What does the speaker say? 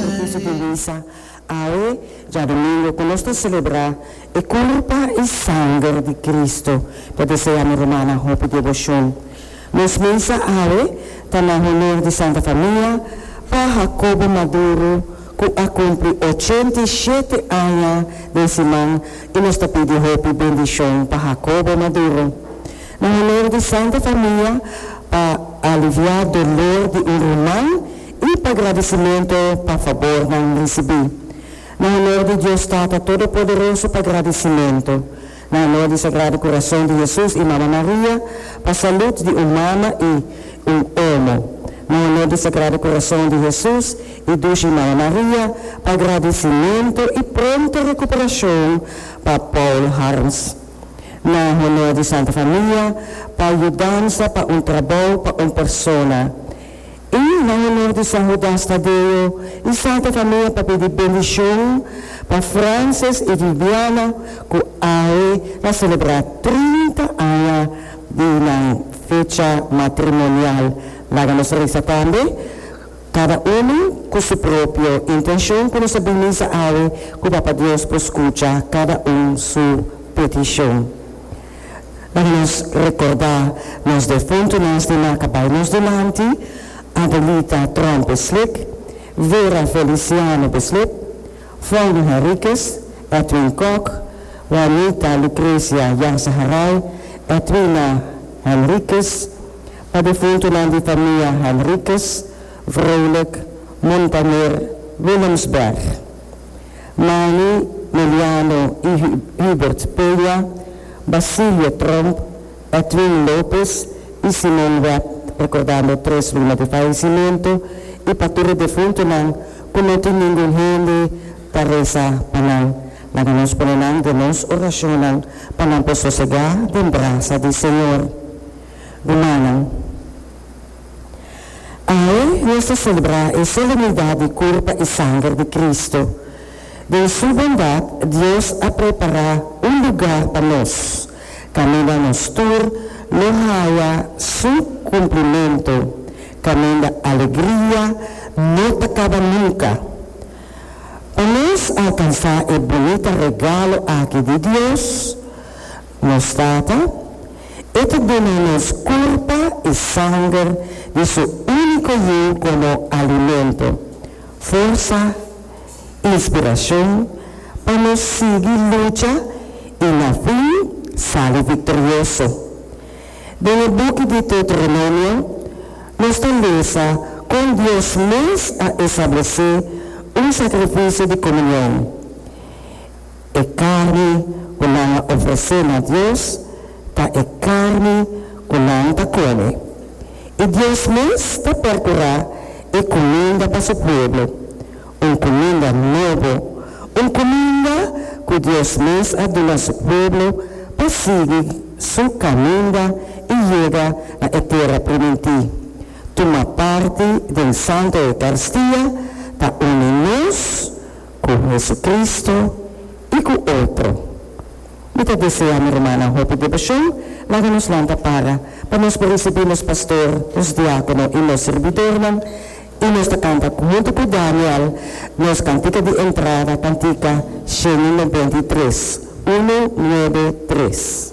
ta visibiliza awe djadomingo cu nos ta celebra e curpa y sanger di Cristo. Ta desea mi rumana hopi devocion. Nos misa awe ta na honor di Santa Famia Pa Jacobo Maduro cu a cumpli ochenta y shete aña den siman y nos ta pidi hopi bendicion pa Jacobo Maduro. Na honor di Santa Famia pa alivia dolor di un ruman I pa gradisimentu pa fabor nan risibí. Na honor di Dios Tata Todopoderoso pa gradisimentu. Na honor di Sagrado Kurason di Hesus i Mama Maria pa salut di un mama i un omo. Na honor di Sagrado Kurason di Hesus i Dushi Mama Maria pa gradisimentu i pronto rekuperashon pa Paul Harms. Na honor di Santa Famia pa yudansa pa un trabou pa un persona. I na honor di San Hudas Tadeo i Santa Famia pa pidi bendishon pa Frances i Viviana ku ai na selebrá trinta aña di nan fecha matrimonial. Laga nos resa tambe, kada unu ku su propio intenshon ku nos a bin misa awe, ku Papa Dios por skucha kada un su petishon. Laga nos rekordá nos defuntunan di maka bai nos dilanti, Adelita Tromp Slik, Vera Feliciano Bislip, Fauno Henriquez, Edwin Kok, Juanita Lucrecia Yazaharay, Edwina Henriquez, pa defuntunan di famia Henriquez, Vrolijk, Montaner, Willems Berg. Manny Meliano y Hubert Peña, Basilio Tromp, Edwin Lopez y Simon Webb, recordando tres luna di fallecimento y pa tur e defuntonan cu no tin ningun hende ta reza pa nan, laga nos pone nan den nos oracionnan pa nan por sosega den brasa di Señor. Rumannan. Awe nos ta selebrá e solemnidat di Kurpa i Sanger di Kristu. Den Su bondat, Dios a prepará un lugá pa nos, kaminda nos tur lo haya Su kumplimentu, kaminda alegria no ta kaba nunka. Pa nos alkansá e bunita regalo aki di Dios, Nos Tata, e ta duna nos kurpa i sanger di su úniko Yiu komo alimento, forsa, inspirashon pa nos sigui lucha i na fin sali viktorioso. Den e buki Deuteronomio nos ta lesa kon Dios mes a establesé un sakrifisio di komunion. E carni cu nan a ofrece na Dios ta e carni cu nan ta come. Y Dios mes ta percura e cuminda pa su pueblo, un cuminda nobo, un cuminda cu Dios mes a duna su pueblo pa sigui su caminda y yega na e tera primintí. Tuma parti den Santo Eucarstia ta uni nos. Ku Hesukristu i ku otro. Mi ta desea mi rumannan hopi debashon. Laga nos lanta para pa nos por risibí nos pastor, nos diákono i nos sirbidornan, i nos ta kanta huntu ku Daniel nos kantika di entrada, kantika sheni nobenta i tres, unu, nuebe, tres.